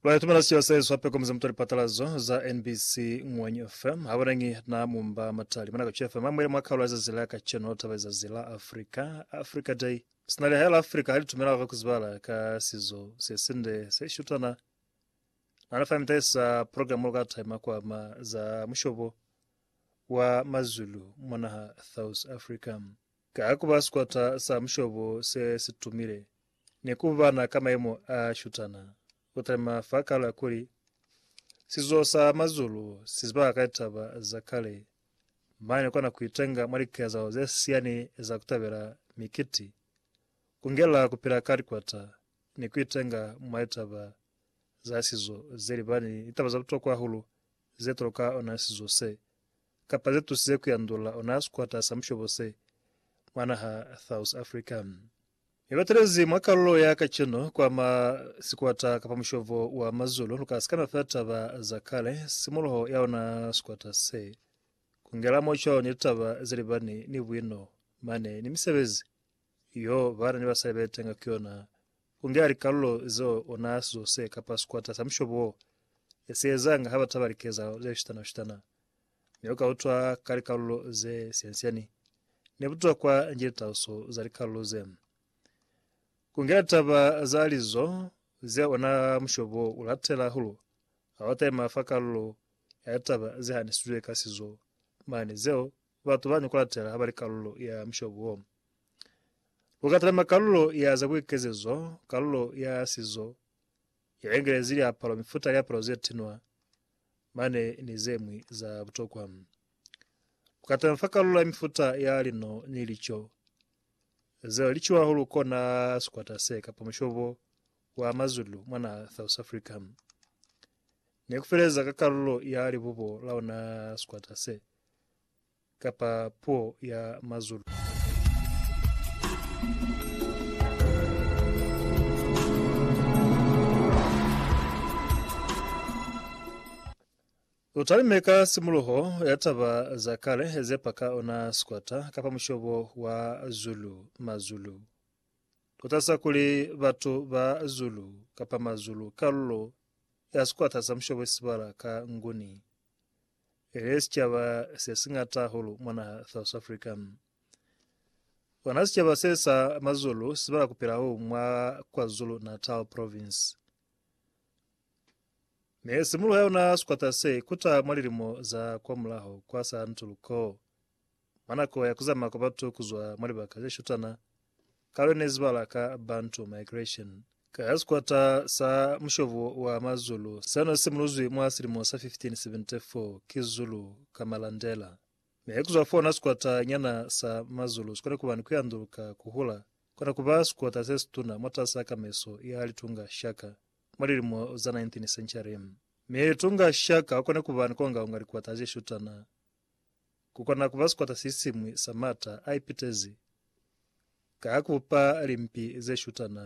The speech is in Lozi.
Lwani tumela siyo sa Yesu hape komuze mutwa lipatalazo za NBC Ngwenyi FM habulangi na mumba matali mwana kachu FM amwele mwa kaula za zila ka cheno taba za zila Africa Africa Day sina liha la Africa hali tumela hava kuzibala ka sizo se sinde se shutana na nafa mitaisa program lo ka time kwa ma za mushobo wa mazulu mwana ha South Africa Ka ku ba sikwata sa mushobo se si tumile, ni ku bana ka maimo a shutana, ku talima fa kala kuli, Sizo sa mazulu si ziba ka litaba za kale. Mane ni kona ku itenga mwa likezahalo ze siani za ku tabela mikiti, ku ngela ku pila ka likwata, ni ku itenga mwa litaba za sizo ze libani ni litaba za butokwa hahulu ze toloka ona sizo se. kapa ze tusize ku yandula ona sikwata sa mushobo se mwa naha South Africa. Mi batelezi mwa kalulo ya kacenu kwama sikwata kapa mushobo wa Mazulu luka sikana fela taba za kale, simuluho ya ona sikwata se, kungela mo cwalo ni litaba ze libani ni buino mane ni misebezi yo bana ni basali betenga ku yona, kungela likalulo zeo ona sizo se kapa sikwata sa mushobo wo esiezanga ha bataba likezahalo ze shutana-shutana. ne lu ka utwa ka likalulo ze siani-siani ne butuwa kwa nji litauso za likalulo ze. Ku ngela taba za lizo zeo ona mushobo u latela hahulu ha wa taima fa kalulo ya litaba ze hanisizwe ka sizo mane zeo batu ba ni ku latela ha ba li kalulo ya mushobo wo. Lu ka talima kalulo ya za buikezezo, kalulo ya sizo ya engelezi liapalo, mifuta ya liapalo ze tinwa, mane ni ze ñwi za butokwa. Ku katana fa kalulo ya mifuta ya lino ni lico zeo li ciwa hahulu kona sikwata se kapa mushobo wa Mazulu mwa naha South Africa. Ne ku feleza ka kalulo ya libubo la ona sikwata se. kapa puo ya Mazulu. U talime ka simuluho ya taba za kale ze pa ka ona sikwata kapa mushobo wa Zulu, Mazulu. U talisa kuli batu ba Zulu kapa Mazulu kalulo ya sikwata sa mushobo isibala ka Nguni. Ele sicaba se siñata hahulu mwa naha South Africa. Ona sicaba se sa Mazulu sibala kupelaho mwa KwaZulu Natal province. Me simuluha yona sikwata se kuta mwa lilimo za kwa mulaho kwa sa Ntuluko. Mwa nako ya ku zama kwa batu ku zwa mwa libaka ze shutana, kalo ne zibala ka Bantu Migration, ka ya sikwata sa mushobo wa Mazulu se no simuluzwi mwa silimo sa 1574 ki Zulu ka Malandela. Mi ku zwa fona sikwata nyana sa Mazulu si kone ku ba ni ku yanduluka ku hula, kona ku ba sikwata se situna mwatas'a kameso ya Litunga Shaka mwa lilimo za 19th century. Mi Litunga Shaka u kone ku ba ni kongaonga likwata ze shutana. Ku kona ku ba sikwata se siñwi sa m'ata a ipitezi ka ku bupa limpi ze shutana